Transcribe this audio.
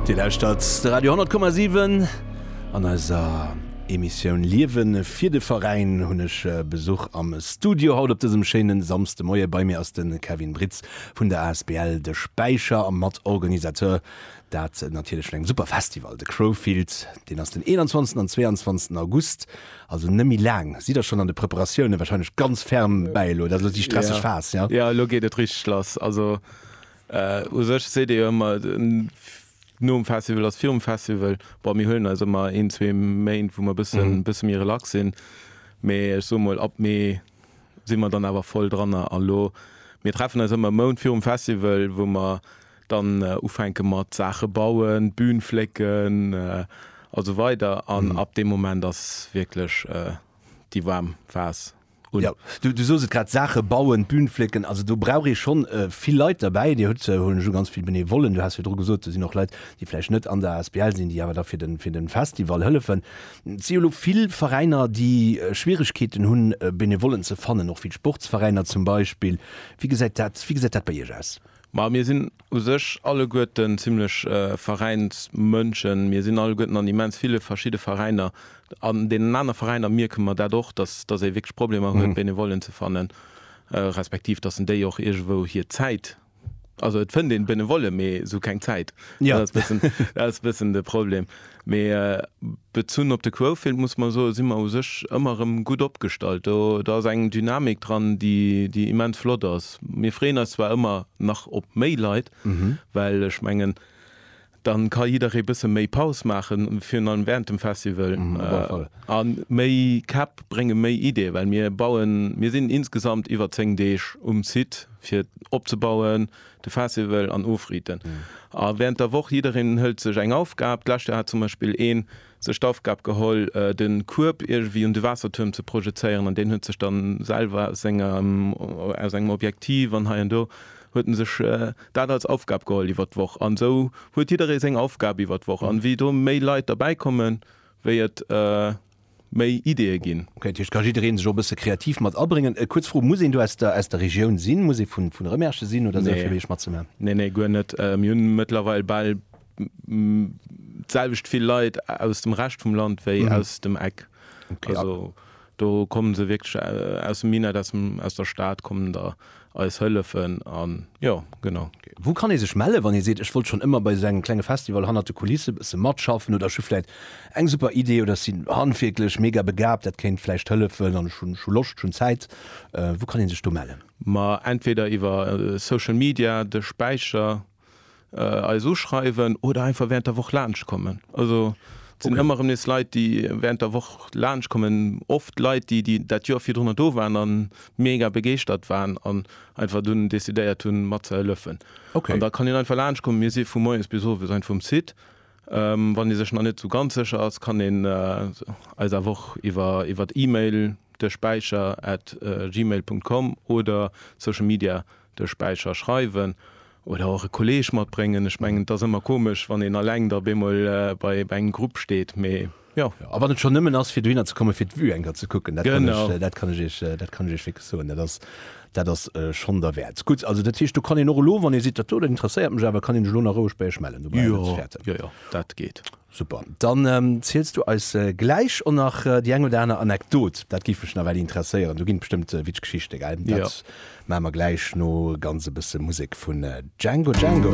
Dir lauschtert de Radio 10,7 an eiser Emissioun Liewen fir de Veräin hunn ech Besuch am Studio haut op dësem schéinen Samsdemoie. Bei mir ass de Kevin Britz vun der asbl De Späicher a Matorganisateur dat natierlech vun engem super Festival, de Crowfield. Deen ass den 21 an 22 August, also net méi laang. Sidd der schonn an de Preparatioune wahrscheinlech ganz ferm bäi elo? Dat ass elo déi stresseg Phas, jo? Jo, elo geet et richteg lass. Also U sech seet ee jo ëmmer, nom Festival ass virum Festival. Bon, mir huelen eis ëmmer een, zwee Méint, wou mer e bësse, bësse méi relax sinn. Mee ech soe mol, ab Mee si mer dann awer voll dranner. A lo, mir treffen eis ëmmer e Mount virum Festival, wou mer dann ufänke mat Saache bauen, d'Bün flécken a sou weider. An ab deem Moment ass wierklech déi waarm Phas. un. Jo, du, du sos et grad, Saache bauen, d'Bün flécken, also do brauch ee schonn vill Leit derbäi. Dir hutt, huelen ech u, ganz vill Benevollen. Du has virdru gesot, do sinn och Leit, déi vläicht net an der asbl sinn, déi awer da fir de, fir de Festival hëllefen. Et si jo elo vill Veräiner, déi Schwieregkeeten hunn, Benevollen ze fannen, och vill Sportsveräiner zum Beispill. Wéi gesäit dat, wéi gesäit dat bei Iech aus? Ma mir sinn u sech alleguerten zimlech Veräinsmënschen. Mir sinn alleguerten an immens ville verschidde Veräiner. An deenen aner Veräiner mierke mer dat och, dass ee wierklech Problemer huet, Benevollen ze fannen, respektiv dass en déi och iergendwou hir Zäit, also et fënnt een Benevolle, mee esou keng Zäit. Dat ass e bëssen de Problem. Mee bezunn op de Quofield muss mer soe si mer u sech ëmmer erëm gutt opgestallt. Do ass eng Dynamik dran, déi immens flott ass. Mir freeën eis zwar ëmmer nach op méi Leit, well ech mengen, da ka jidderee e bësse méi Paus maachen, virun allem wärend dem Festival. A méi Käpp brénge méi Ideeë, well mir bauen, mir sinn insgesamt iwwer zéng Deeg um Site fir opzebauen, De Festival an ofriiten. A während der Woch, jiddereen hëlt sech eng Aufgab. D'lescht Joer hat zum Beispill ee sech d'Aufgab geholl, de Kueb iergendwéi un de Waassertuerm ze projezéieren. An deen huet sech da selwer aus sengem, aus engem Objektiv an hei an do, huet en sech dat als Aufgab geholl iwwert d'Woch. An esou huet jidderee seng Aufgab iwwert d'Woch. An wéi do méi Leit derbäikommen, wéi et. méi Ideeë ginn. Ok, dat heescht, ka jiddereen sech och e bësse kreativ mat abréngen. Kuerz Fro, muss een do aus der aus der Regioun sinn, muss ee vun vun Remerschen sinn oder esou, fir bei iech matzemaachen? Nee, nee, guer net. Mir hunn mëttlerweil bal d'selwecht vill Leit aus dem Rescht vum Land wéi aus dem Eck. Also do kommen se wierklech aus dem Minett, aus dem aus der Stad kommen der. eis hëllefen an jo genau. Wou kann ee sech mellen wann ee seet ech wollt schonn ëmmer bei esou engem klenge Festival hannert de Kulisse bësse matschaffen oder ech hu vläit eng super Idee oder ech sinn handwierklech mega begaabt dat kéint vläicht hëllefen an ech hunn ech hu Loscht ech hunn Zäit. Wou kann een sech do mellen? Ma entweder iwwer social media, de Späicher. eis uschreiwen oder einfach während der Woch laanscht kommen. Also et sinn ëmmer erëm nees Leit, déi während der Woch laanscht kommen. Oft Leit, déi déi dat Joer virdrunner do waren a mega begeeschtert waren an einfach dunn decidéiert hunn, matzehëllefen. An da kann een einfach laanscht kommen. Mir si vu moies bis owes einfach um Site. Wann ee sech nach net esou ganz sécher ass, kann een eis awer och iwwer iwwer E-Mail, desspeicher at gmail Punkt com, oder Social Media de Späicher schreiwen oder och e Kolleeg matbréngen. Ech mengen, et ass ëmmer komesch, wann een alleng da bemol bei engem Grupp steet, mee jo. A wann et schonn nëmmen ass, fir dohinner ze kommen, fir d'Vue enker ze kucken, dat kann ech, dat kann ech Iech, dat kann ech Iech wierklech soen, dat ass, dat ass schonn derwäert. Gutt, also dat heescht, do kann een och elo, wann ee seet, dat do, dat interesséiert mech awer, kann een sech elo nach roueg bei Iech mellen, dobäi ass alles fäerte. Jo, jo, jo, dat geet. Super, dann ziels du eis gläich och nach déi eng oder aner Anekdot, dat géif mech nawell interesséieren. Do ginn et bestëmmt witsch Geschichte, gell? Dat maache mer gläich no ganz e bësse Musek vun Django Django.